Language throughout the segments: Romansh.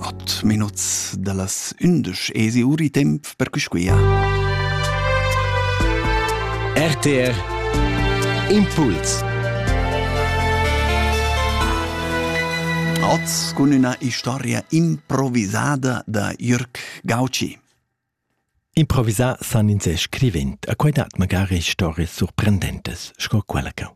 At minuts dallas ündesch esi uri temp per cusquia. RTR Impuls Oz cun üna historia improvisada da Jürg Gauci. Improvisà san ins scrivent, a quai dat magari stories surprendentes, sco quella che.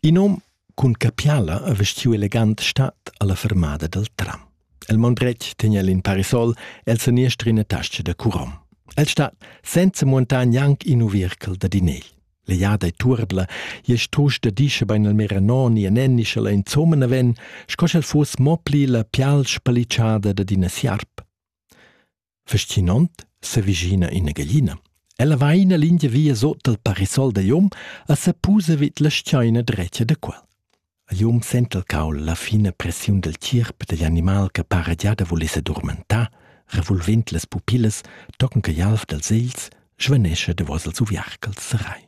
In hom cun capiala ha vestiu elegant stat alla fermada dal tram. El maun dretg tegna el in parasol el seniester ina tascha da curom. El stat senza muontar gnanc in uviercal da dinel. Leiada e turbla, je strusch da dische bein el mera noni e nenni sch'ella insomma na ven, sco sch'el fuss mo pli la pial spaliciada da d'ina sierp. Fascinant s'avvicina ina gaglina. Ella va ina lingia via sot dal parasol da jom e sa pusa vid la schaina drecia da quel. Il jom senta il caul la fina pressiun dal tgierp dagl animal che para già da voler s'addormentar, revolvend las pupillas, tochen che gl'alf dals egls svanescha davos ils uviarcals serai.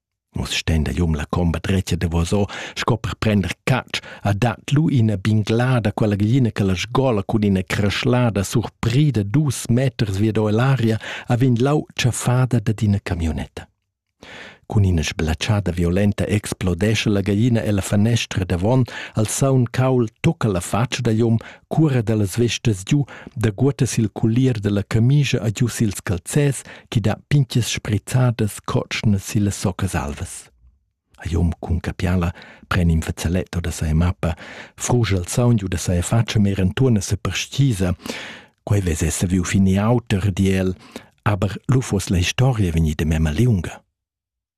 Vus stenda jum la comba dretga davosò sco per prender catsch, ha dat lu ina binglada quella glina che la sgola cun ina creschlada surprida dus meters vi da l'aria ha vegn lau tschaffada dad ina camionetta. Cun ina sblatschada violenta explodescha la gallina ella fanestra davon, al saun caul tocca la faccia da jum, Cura dallas vestas giu daguotta sil culier dalla camischa e giu sils calzers chi dà pintgas sprizzadas cotschnas sillas soccas alvas. A Jom cun capiala pren in fazzaletto da sai mappa, frugia il saun giu da sai faccia mer entuorn a sa perstgisa. Quei vez essa viu fin e auter, di el, aber lu fuss la historia vegnida memma liunga.